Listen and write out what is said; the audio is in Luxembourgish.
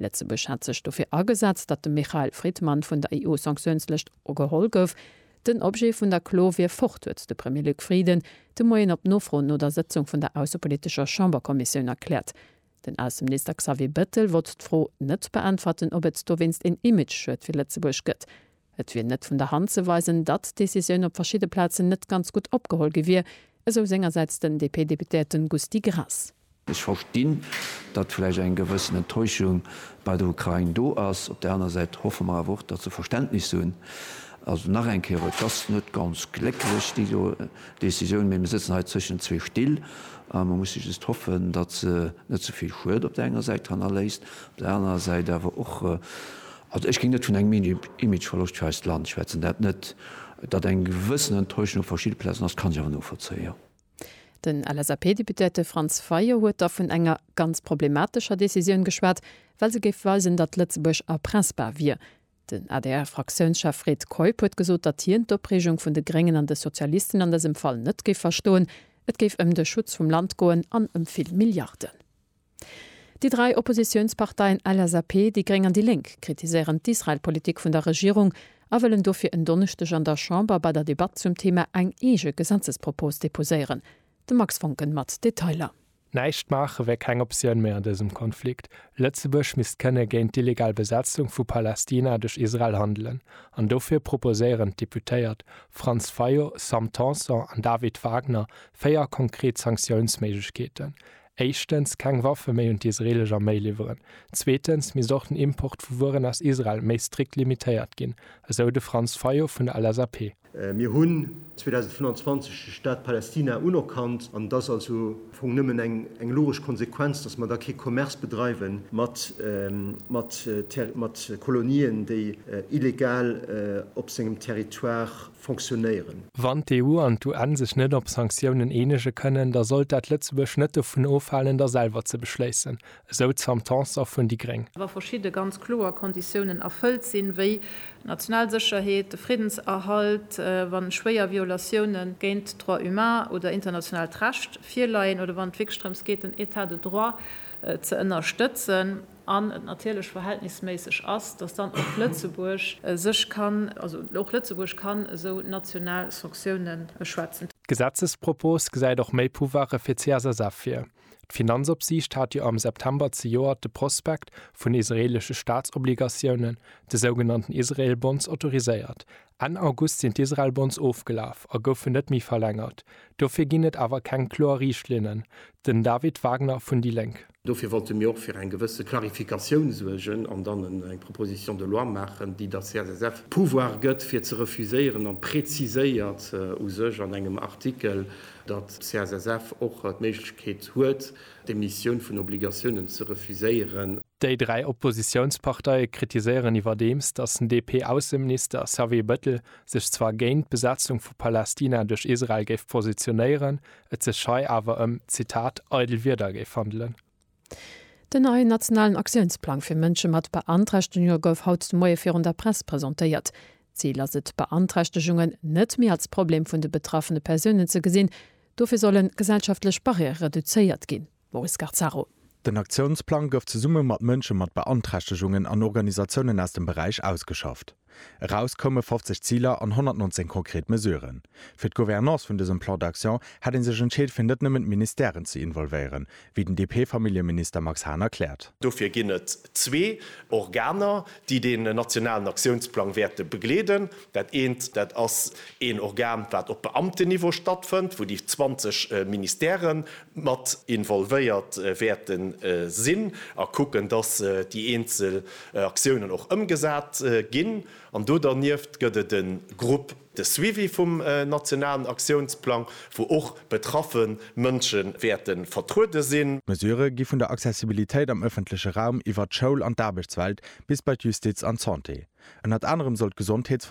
Lëtzebuerg hat sech dofir agesat, datt de Michael Fridman vun der EU-Sanktiounslëscht geholl gouf. Den Objet vun der Klo wier fort, huet de Premier Luc Frieden de Moien op Nofro no der Sëtzung vun der aussepolitescher Chamberkommissioun erkläert. Den Ausseminister Xavier Bettel wollt d'Fro net beäntwerten, ob et dowéinst een Image-Schued fir Lëtzebuerg gëtt. Et wier net vun der Hand ze weisen, datt d'Decisioun op verschidde Plazen net ganz gutt opgeholl gi wier, esou sengersäits den DP-Deputéierten Gusty Graas. Ech verstinn, datt vläicht eng gewëssen Enttäuschung bei der Ukrain do ass. Op där aner Säit hoffe mer awer och, datt se Verständnis hunn. Also nach eng Kéier, et ass net ganz glécklech déi do Decisioun, mee mir sëtzen hei zwëschen zwee Still a mir musse just hoffen, datt se net ze vill Schued op där enger Säit hannerléisst, op där anerer Säit awer och, Also ech géing net vun engem Imageverloscht fir eist Land schwätzen, dat net. Datt eng gewëssen Enttäuschung op verschidde Plazen ass, kann ech awer novollzéien, jo. Den LSAP-Deputéierte Franz Fayot huet da vun enger ganz problematescher Decisioun geschwat, well se géif weisen, datt Lëtzebuerg erpressbar wier. Den ADR-Fraktiounschef Fred Keup huet gesot, datt hien d'Opreegung vun de Gréngen an de Sozialisten an dësem Fall net géif verstoen. Et géif ëm de Schutz vum Land goen an ëm vill Milliarden. Déi dräi Oppositiounsparteien LSAP, déi gréng an déi Lénk kritiséieren d'Israel-Politik vun der Regierung a wëllen dofir en Donneschdeg an der Chamber bei der Debatt zum Thema eng eege Gesetzespropos deposéieren. De Max Voncken mat Detailer. Näischt maache wär keng Optioun méi an dësem Konflikt. Lëtzebuerg misst kënne géint d'illegal Besetzung vu Palästina duerch Israel handelen an dofir proposéieren d'Deputéiert Franz Fayot, Sam Tanson an David Wagner véier konkret Sanktiounsméiglechkeeten, éischtens keng Waffe méi un d'isreelesch Arméi liwweren, zweetens misst och den Import vu Wueren aus Israel méi strikt limitéiert ginn, esou de Franz Fayot vun der LSAP. Mir hunn 2025 de Staat Palästina unerkannt an et ass also am Fong nëmmen eng logesch Konsequenz, datt mer da kee Commerce bedreiwe mat Kolonien, déi illegal op sengem Territoire fonctionnéieren. Wann d'EU an d'UN sech net op Sanktiounen eenege kënnen, da sollt dat Lëtzebuerg net dovun ofhalen, der selwer ze beschléissen, esou d'Sam Tanson vun déi gréng. wa verschidde ganz kloer Konditiounen erfëllt sinn, wéi d'national Sécherheet, de Friddenserhalt, wa schwéier Violatioune géint d'Droits humains oder internationaalt Recht virleien oder wann et wierklech drëms geet, den État de droit ze ënnerstëtzen. an et natierlech verhältnisméisseg ass, dass dann och Lëtzebuerg sech kann, also och Lëtzebuerg kann esou national Sanctioune schwätzen. D'Gesetzespropos gesäit och méi Pouvoire fir d'CSSF vir. D'Finanzopsiicht hat jo am September zejoert de Prospekt vun israeelesche Staatsobligatiounen, de sougenannten Israel Bonds, autoriséiert. Enn August sinn d'Israel Bonds ofgelaf a goufen net méi verlängert. Dofir ginn et awer keng kloer Riichtlinnen. Den David Wagner vun déi Lénk. Dofir wollte mir och fir eng gewësse Clarificatioun suergen an dann eng Proposition de loi maachen, déi der CSSF d'Pouvoir gëtt, fir ze refuséieren, an preziséiert u sech an engem Artikel, datt d'CSSF och d'Méiglechkeet huet, d'Emissioun vun Obligatiounen ze refuséieren. Déi dräi Oppositiounsparteie kritiséieren iwwerdeems, datt den DP-Ausseminister Xavier Bettel sech zwar géint d'Besetzung vu Palästina duerch Israel géif positionéieren, et sech hei awer ëm, Zitat, eidel Wierder géif handelen. Den neien nationalen Aktiounsplang fir Mënsche mat Beanträchtegunge gouf haut de Moie virun der Press presentéiert. Zil ass et, Beanträchtegungen net méi als Problem vun de betraffene Persounen ze gesinn. Dofir sollen gesellschaftlech Barrièrë reduzéiert ginn. Maurice Garzaro. Den Aktiounsplang gouf zesumme mat Mënsche mat Beanträchtegungen an Organisatiounen aus dem Beräich ausgeschafft. Eraus koume 50 Ziler an 119 konkret Mesuren. Fir d'Gouvernance vun dësem Plan d'action hätt ee sech entscheet fir net nëmmen d'Ministèren ze involvéieren, wéi den DP-Familljeminister Max Hahn erkläert. Dofir ginn et zwee Organer, déi deen nationalen Aktiounsplang wäerte begleeden. Dat eent, dat ass een Organ, wat op Beamtenniveau stattfënnt, wou déi 20 Ministèrë mat involvéiert wäerte sinn a kucken, dass déi eenzel Aktiounen och ëmgesat ginn. An do dernieft gëtt et e Grupp, De Suivi vum nationalen Aktiounsplang, wou och betraffe Mënsche wäerte vertruede sinn. D'Mesurë gi vun der Accessibilitéit am ëffentleche Raum iwwert d'Schoul an d'Aarbechtswelt bis bei d'Justiz an d'Santé. Ënnert anerem soll d'Gesondheetsversuergung,